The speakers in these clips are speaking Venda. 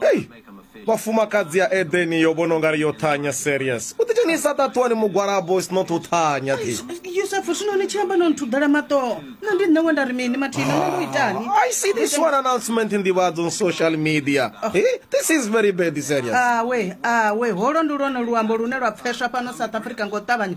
Hey, vhafumakadzi ya edeni yo vhona ungari yo thanya serious u ḓidzhenisa ṱaṱuwani mugwalabo is not u thanya thi yusufu zwino ni tshi amba no nthudela maṱoho na ndi nṋe we nda ri mini mathina nṋe ndo itani ah, i see this one announcement in nḓivhadzo on social media oh. hey, this is very bad serious awe ah, awe ah, holo ndi lwone luambo lune lwa pfeswa fhano south africa ngo ṱavhanya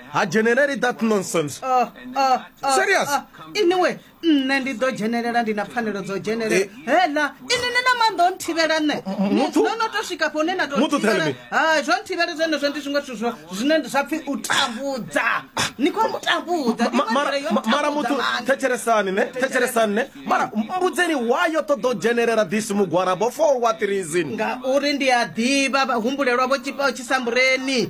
ha dzheneleli that nonsense ah, ah, ah, serious iniwe nṋe ndi ḓo dzhenelela ndi na pfanelo dzo dzhenelela eh. hela ini ni na maanḓa o nthivhela nṋe no no to swika fho une na tothivhela ha zwo nthivhela zwone zwo ndi zwiṅwe zwithu zwo zwine zwa pfhi u tambudza ni khou ntambudza mara muthu thetshelesani ne thetshelesani ne mara mbudzeni wa yo ṱoḓa u dzhenelela this mugwarabo for what reason ngauri ndi a ḓivha vhahumbulelwa vho tshipa o tshisambureni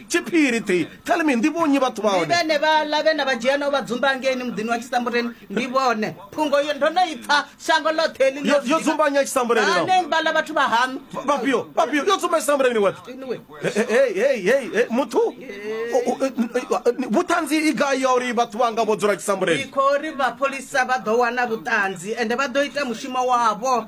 tshiphiri ḓi tell me ndi vhonyi vhathu vha hone vhene vha ḽa vhene vha dzhia no vha dzumba ngeini muḓini wa tshisambuleni ndi vhone phungo yo ndo no ipfa shango ḽoṱhe ḽi Yo- yo dzumba nnyi ya tshisambuleni nao? ane vha ḽa vhathu vha haṋu vhafhio vhafhio yo tsumba tshisambuleni ni weṱhe Anyway. Hey, hey, hey, hey, muthu u- u- u- vhuṱanzi i gai ya uri vhathu vhanga vho dzula tshisambuleni ndi khou ri vhapholisa vha ḓo wana vhuṱanzi ende vha ḓo ita mushumo wavho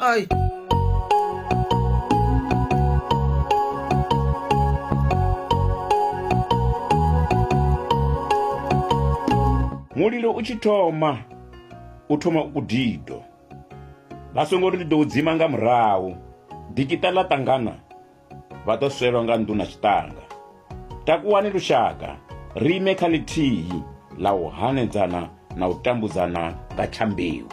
Ay. mulilo u tshi thoma u thoma u kudido vha songo ri ndi ḓo u dzima nga murahu dikita ḽa ṱangana vha ḓo swelwa nga nḓu na tshiṱanga takuwani lushaka ri ime kha ḽithihi ḽa u hanedzana na u tambudzana nga tshambiwa